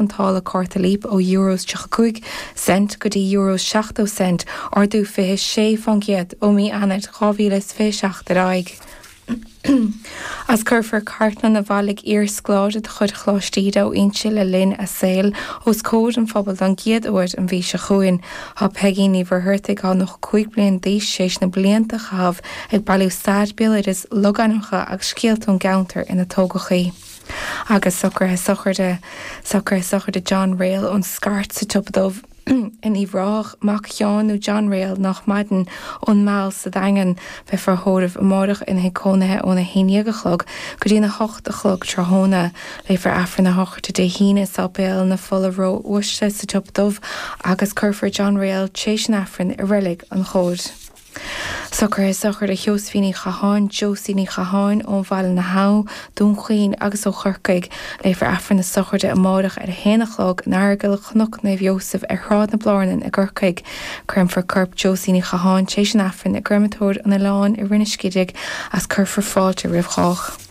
an táille cárta Leap ó Euro is 35 Cent go dtí Euro is 70 Cent, ardú 26% ó mí Eanáir 2027 ar aghaidh, is cuirfear cartlann a bhailigh iarscoláire de chuid Choláiste Íde ó Inse le linn a saoil os comhair an phobail don gcéad uair an mhí seo chugainn. Tá Peigín Ní Mhuircheartaigh athá 95 bliain d'aois tréis na blianta a chaitheamh ag bailiú stair, béaloideas, logainmneacha agus scéalta ón gceantar ina tógadh í. agus socruithe sochraide, socruithe sochraide John Ryle ón Scairt sa tSiopa Dubh in Uíbh Ráthach, mac Sheáin nó John Ryle nách maireann ón Meal sa Daingean, beifear á thórramh amáireach ina thigh cónaithe óna haon déag a chlog go dtí na hocht a chlog tráthnóna, léifear Aifreann a shochraide Dé hAoine i Sáipéal na Fola Ró-Uaisle sa tSiopa Dubh agus cuirfear John Ryle tréis an Aifrinn i Reilig an Chomhaid. Socruithe sochraide Sheosaimhín Ní Chatháin, Josie Ní Chatháin, ó Bhaile na hAbha, Dún Chaoin agus ó Chorcaigh. Léifear Aifreann a sochraide amáireach ar a haon a chlog in Aireagal Chnoc Naomh Iósaf ar Shráid na Blárnan i gCorcaigh. Créamfar corp Josie Ní Chatháin tar éis an Aifrinn i gCréamatóir an Oileáin i Rinn an Scidígh is cuirfear fáilte roimh chách.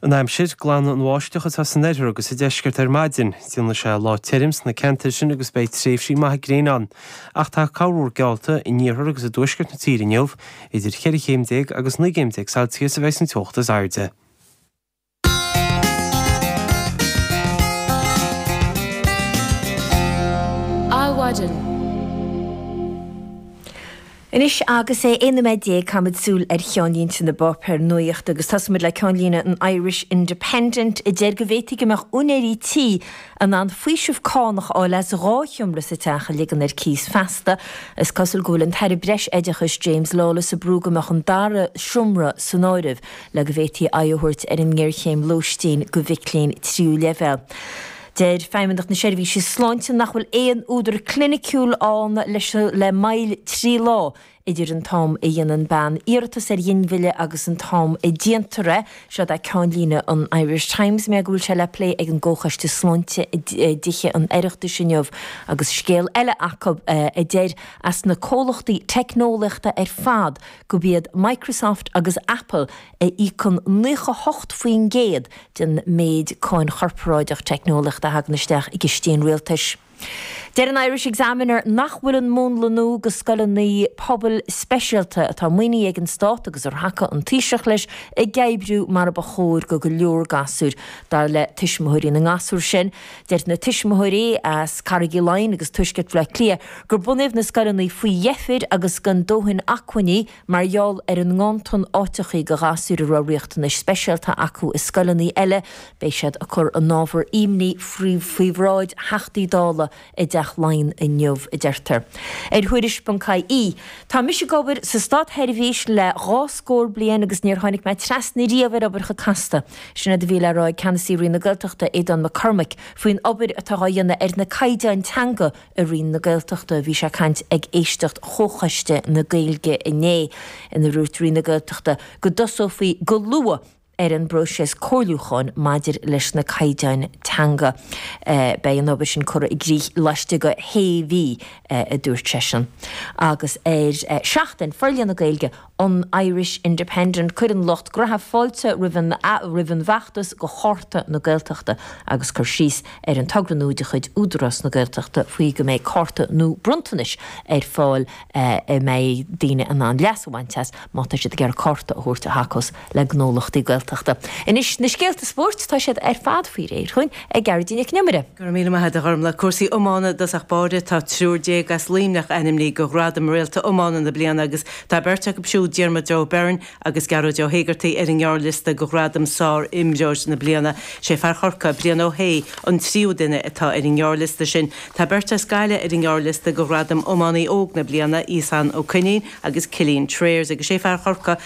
an aimsir, glanfaidh an bháisteach atá san oirthear agus sa deisceart ar maidin. Déanfaidh sé lá tirim sna ceantair sin agus beidh tréimhsí maithe gréine ann. Ach tá corrmhúr geallta in iarthar agus i dtuaisceart na tíre inniu. Idir cheithre chéim déag agus naoi gcéim déag Celsius a bheas an teocht is airde. Adhmhaidin. Anois agus é 11 nóiméad caithfimid súil ar cheannlínte na bpáipéar nuaíochta agus tosóidh muid le ceannlíne an Irish Independent a deir go bhféadfadh go mbeadh úinéirí tí in ann faoiseamh cánach a fháil as dhá sheomra sa teach a ligean ar cíos feasta. Is cosúil go bhfuil an tAire Breis Oideachais James Lawless ag brú go mbeadh an dara seomra san áireamh le go bhféadfaí aghaidh a thabhairt ar an ngéarchéim lóistín do mhic léinn tríú leibhéal. Deir Feidhmeannacht na Seirbhíse Sláinte nach bhfuil aon údar cliniciúil ann leis an le moill trí lá idir an t-am a dhéanann bean iarratas ar ghinmhilleadh agus an t-am a déantar é. Seo é ceannlíne an Irish Times, mar go bhfuil sé le plé ag an gComhchoiste Sláinte i dTithe an Oireachtais inniu agus scéal eile acu a deir as na comhlachtaí teicneolaíochta ar fad gurb iad Microsoft agus Apple a íocann 98% den méid cáin chorparáideach teicneolaíochta a thagann isteach i gcistí an rialtais. Deir an Irish Examiner nach bhfuil an múnla nua de scoileanna pobail speisialta atá maoinithe ag an stát agus ar thacaigh an Taoiseach leis ag oibriú mar a ba chóir do go leor gasúr. Dar le tuismitheoirí na ngasúr sin, deir na tuismitheoirí as Carraig Uí Leighin agus Tuaisceart Bhaile Átha Cliath gur bunaíodh na scoileanna faoi dheifir agus gan dóthain acmhainní Mar gheall ar an nganntan áiteachaí do ghasúir a raibh riachtanais speisialta acu i scoileanna eile, beidh siad ag cur a n-ábhar ímní faoi bhráid Theachtaí Dála i dTeach Laighean inniu, a deirtear. Ar Thuairisc.ie Tá mise ag obair sa stát-sheirbhís le dhá scór bliain agus níor tháinig mé trasna riamh ar obair chomh casta. Sin é a bhí le rá ag Ceannasaí Roinn na Gaeltachta, Aodán Mac Cormaic, faoin obair atá á dhéanamh ar na caighdeáin teanga, i Roinn na Gaeltachta. Bhí sé ag caint ag éisteacht Chomhchoiste na Gaeilge inné ina dúirt Roinn na Gaeltachta go dtosófaí go luath ar an bpróiseas comhairliúcháin maidir leis na caighdeáin teanga. Beidh an obair sin curtha i gcrích laistigh de shé mhí, a dúirt seisean. Agus ar Seachtain, Forlíonadh Gaeilge, an Irish Independent, Cuireann lucht graithe fáilte roimh an bhfeachtas go Cárta na Gaeltachta agus cur síos ar an togra nua de chuid Údarás na Gaeltachta faoi go mbeidh cárta nó bronntanais ar fáil a mbeidh daoine in ann leas a bhaint as má tá siad ag iarraidh cárta a thabhairt a thacós le gnólachtaí Gaeltachta. Anois, na scéalta spóirt, tá siad ar fad faoi réir dhúinn ag Gearoidín Nic an Iomaire. Go raibh míle maith a'd a Ghormlaith. Cúrsaí iomána i dtosach báire, tá triúr déag as Luimneach ainmnithe do ghradam Réalta Iomána na Bliana agus tá beirt acu siúd, Diarmuid Ó Beirn agus Gearóid Ó hÉigeartaigh, ar an ngearrliosta go ghradam Sár-Iománaí na Bliana. Sé fear Chorcaí, Brian Ó hAodh, an tríú duine atá ar an ngearrliosta sin. Tá beirt as Gaillimh ar an ngearrliosta go ghradam Iománaí Óg na Bliana, Iasán Ó Coinín agus Cillian Trayers, agus sé fear Chorca,